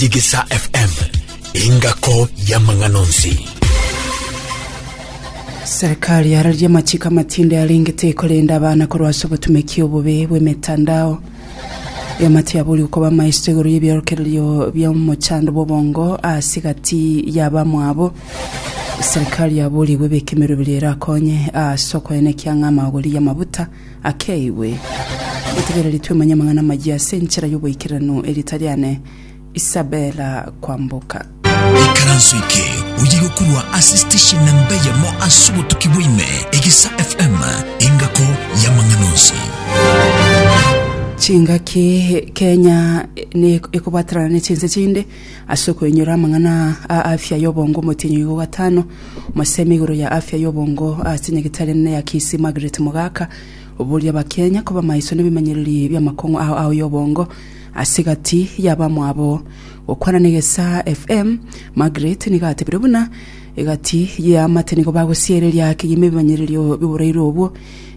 Tigisa FM, engako y'amang'ana onsi. Serikali yararia amachiko amatinde arengete ekorenda abana korwa ase obotumeki obobe bw'emetandao. Eoma tiyaboria okoba amaisto igoro y'ebiorokererio bia omochando bw'obongo ase gati y'abamwabo. Serikali yaboria igwe ebeke emeroberi erakonye ase okoenekia ng'a amagori y'amabuta akeigwe. Botegereri twemanye amang'ana amayia ase enchera y'oboikeranu eri tariane Isabella kwamboka. Ikaranso eke oye gokorwa ase station na mbeyemo ase obotuki bwaime Egesa FM engako y'amang'ana onsi. Chingaki Kenya ne ekobaterana ne chinse chinde. Ase okoinyora amang'ana aa a afya y'obongo omotienyi oigo gatano, omosemi igoro ya afya y'obongo ase nyagetari enene ya Kisii Margaret Mogaka oboria abakenya koba maiso nebimenyereri bi'amakong'u ao ao y'obongo ase gati yabamwabo. Gokwana negesaa FM, Margaret nigo atebire buna egati yeamate nigo bagosiereria kegima ebimenyererio biboreirwe obwo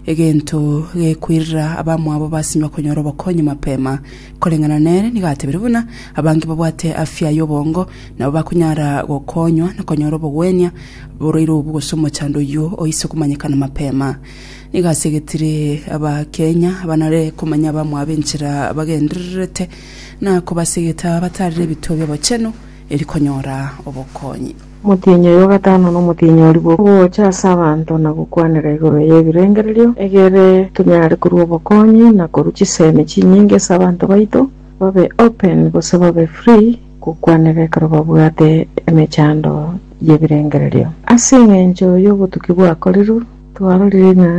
egento gekoirera abamwabo basinywa konyora obokonyi mapema. Koreng'ana nere nigo atebire buna abange babwate afya y'obongo nabo bakonyara gokonywa na konyora obogwenia borwaire obo gose omochando oyio oise komanyekana mapema. Nigo ase getire Abakenya banare komanya abamwabo enchera bagendererete na kobasegeta batarire ebituo bi'obochenu eri konyora obokonyi. Omotienyi oyo o gatano nomotienyi o riboko, ogocha ase abanto na gokwanera igoro y'ebirengererio, egere tonyare korua obokonyi na korua chisemi chinyinge ase abanto baito, babe open gose babe free gokwanera ekero babwate emechando y'ebirengererio. Ase engencho y'obotuki bwakorirwe, twarorire ng'a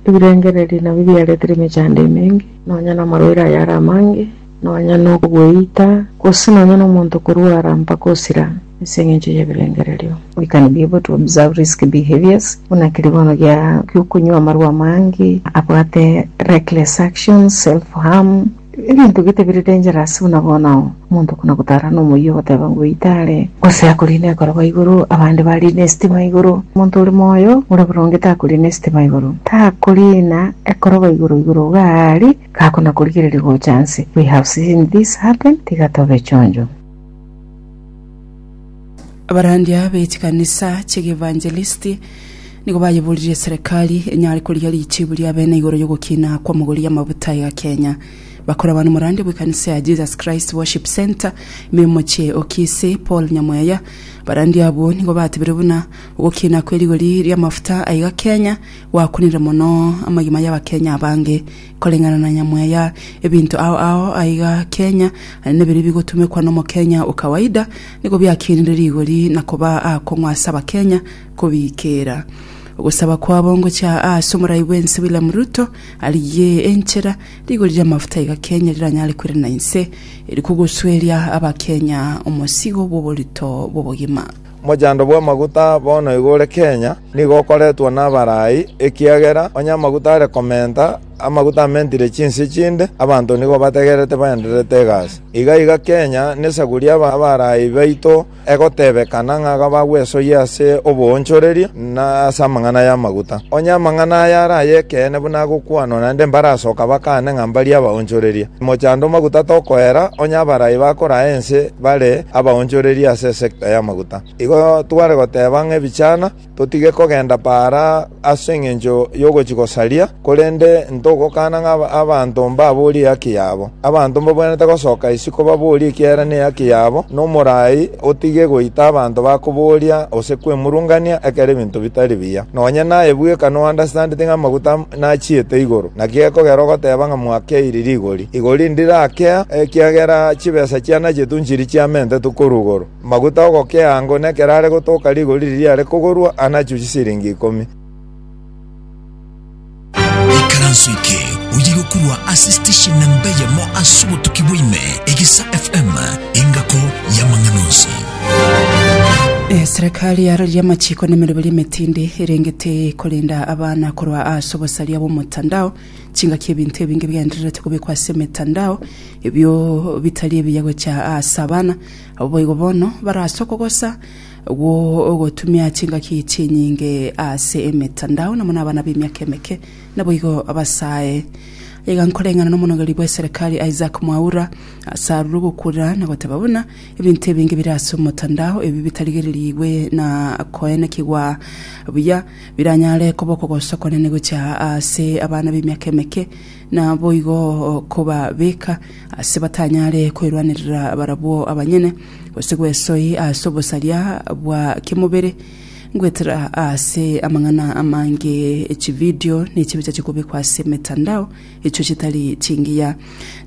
ebirengererio nabio biaretire emechando emenge, nonya namarwaire ayare amange, nonya nokogweita, gose nonya nomonto korwara mpaka osira. Ase engencho y'ebirengererio goikani biabo to observe risky behaviors, buna keribono gia gi'okonywa amarwa amange, abwate reckless actions, self-harm, ebinto gete bire dangerous buna bono omonto buna gotara nomoyio ogoteba ng'o oitare, gose akorina ekorogo igoro, abande barine esitima igoro. Omonto ore moyo ore boronge takorina esitima igoro, takorina ekorogo igoro igoro iga aria gakona korigereria gocha nse. We have seen this happen, tiga tobe chonjo. Abarandia be chikanisa chi'Eevangelisti nigo bayeboririe serikali enyare korigia richiibu ria bene igoro y'ogokina kw'omogori amabuta iga Kenya. Bakorabana n'omorandia bw'ekanisa ya Jesus Christ Worship Centre ime y'omochie o Kisii, Paul Nyamweya. Abarandia abwo nigo batebire buna ogokina kwe rigori ri'amafuta aiga Kenya gwakunire mono amagima y'abakenya abange. Koreng'ana na nyamwe ya ebinto ao ao aiga Kenya, aye nebiria bigotumekwa nomokenya o kawaida, nigo biakinire rigori na koba aakong'u ase abakenya kobiikeera ogosaba kwabo ngochia aase omorai bwense William Ruto arigie enchera rigori riamafuta aiga Kenya riranyare kwerana inse eri kogosweria abakenya omosigo bwoborito bwobogima. Omochando bw'amaguta bono igo ore Kenya, nigo okoretwa nabarai, ekiagera onye amaguta are komenta, amaguta amentire chinse chinde, abanto nigo bategererete baendererete egasi. Iga iga Kenya nesaguri abarai baito egotebekana ng'a iga bagwesoyia ase oboonchoreria na ase amang'ana y'amaguta. Onye amang'ana aya are ay'ekeene buna agokwanwa naende mbarasoka bakane ng'a mbarie abaonchoreria. Mochando maguta tokoera, onye abarai bakoraa ense, bare abaonchoreria ase esekta y'amaguta. Igo tware goteba ng'a ebichana totige kogenda paara ase engencho y'ogochia gosaria, korende ntogokana ng'a abanto mbaborie ehaki yabo. Abanto mbabwenerete gosoka isiko baborie ekiagera nehaki yabo, na omorai otige goita abanto bakoboria gose kwemurungania ekero ebinto bitari biya. Nonya naye bweka nounderstandete ng'a amaguta nachiete igoro, naki gekogera ogoteba ng'a mwakeire rigori, igori ndirakea, ekiagera chibesa chiane nachiato nchiria chiamentetwe korwa igoro. Amaguta agokea ango nekero are gotoka rigori riria riare kogorwa anachio chisiringi ikomi. Ikaranso eke oyigo korwa ase station namba eyemo ase obotuki bwa ime, Egesa FM, engako y'amang'ana onsi. Eserekari ya Roria Amachiko na emeroberi emetindi erenge tekorenda abana korwa ase obosaria bw'omotandao. Chingaki ebinto ebinge bigendererete kobekwa ase emetandao ebio bitari ebiya gocha ase abana. Abwo boigo bono bare ase okogosa gwo gotumia chingaki chinyinge ase emetandao na buna abana b'emiaka emeke naboigo basae. Iga nkoreng'ana n'omonogeri bw'eserekari Isaac Mwaura ase arure ogokura na goteba buna Ebinto ebinge bire ase omotandao ebi bitarigererigwe na koenekigwa buya, biranyare koba okogosa okonene gochia ase abana b'emiaka emeke, na boigo kobabeka ase batanyare kwerwanerera barabwo abanyene, gose gwesoi ase obosaria bwa kemobere, goetera ase amang'ana amange, echividio, na echibicha chikobekwa ase emetandao. echio chitari chingiya.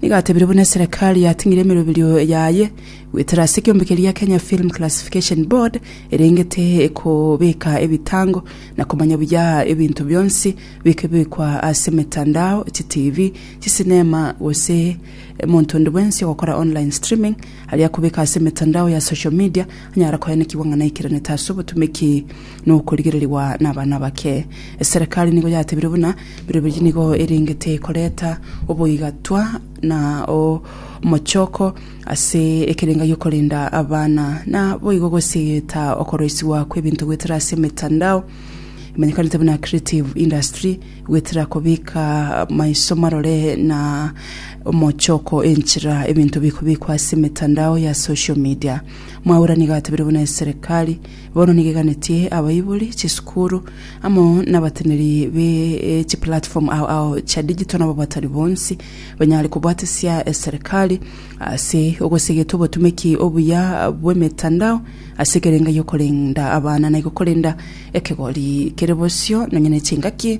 Nigo atebire buna eserekari yating'ire emeroberio yaye goetera ase ekeombe keria Kenya Film Classification Board erengete kobeka ebitango na komanya buya ebinto bionsi bikebekwa ase emetandao, chitivi, chisinema gose omonto onde bwensi ogokora online streaming aria kobeka ase emetandao ya social media anyara koenekigwa ng'a naikiranete ase obotumeki nokorigererigwa nabana abake. Eserekari nigo yatebire buna birobiri nigo erengete koreta oboigatwa na omochoko ase ekerenga giokorenda abana na boigo gosegeta okoroisigwa kwebinto goetera ase emetandao emanyekanete buna creative industry goetera kobika maiso marore na omochoko enchera ebinto bikobikwa ase emetandao ya social media. Mwaura nigo atebire buna eserekari Bono nigeganetie abaibori, chisukuru, amo nabateneri be chiplatform ao ao chia digital nabo batari bonsi banyare kobwatesia eserikali ase ogosegeta obotumeki obuya bw'emetandao ase ekerenga gi'okorenda abana na igo korenda ekegori kere bosio nonya ne chingaki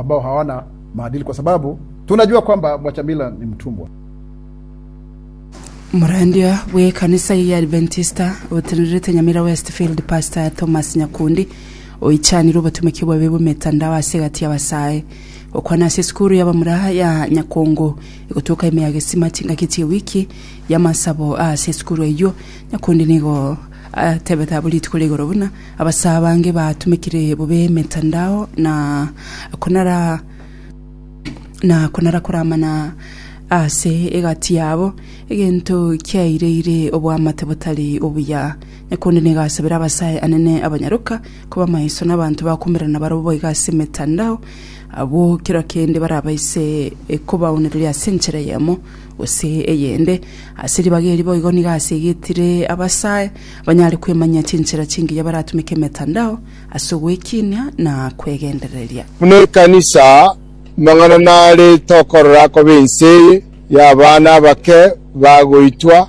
ambao hawana maadili kwa sababu tunajua kwamba Bwachamila ni mtumbwa. Omorandia bw'ekanisa eye ya Adventista otenerete Nyamira Westfield Pastor Thomas Nyakundi oichanire obotomeki obobe bw'emetandao ase egati y'abasae gokwana ase esukuru y'abamura ya Nyakongo egotoka ime ya Gesima chingaki chi'ewiki y'amasabo ase esukuru eyio Nyakundi nigo Atebete abwo rituko ria igoro buna abasaa bange batumekire bobe emetandao na konara na konara koramana ase egati yabo, egento kiaireire oboamate botari obuya. Na konde nigasabera abasae anene abanyaroka koba maiso nabanto bakomerana barabwo boigo ase emetandao, abwo kera kende barabaise kobaonereria ase enchera eyemo. gose eyende, ase ribaga eri boigo nigo asegetire abasae banyare kwemanyia chinchera chingiya baratumeke emetandao ase ogwekinia na kwegendereria. Buna ekanisa, amang'ana nare tokorora akoba ense eye y'abana abake bagoitwa,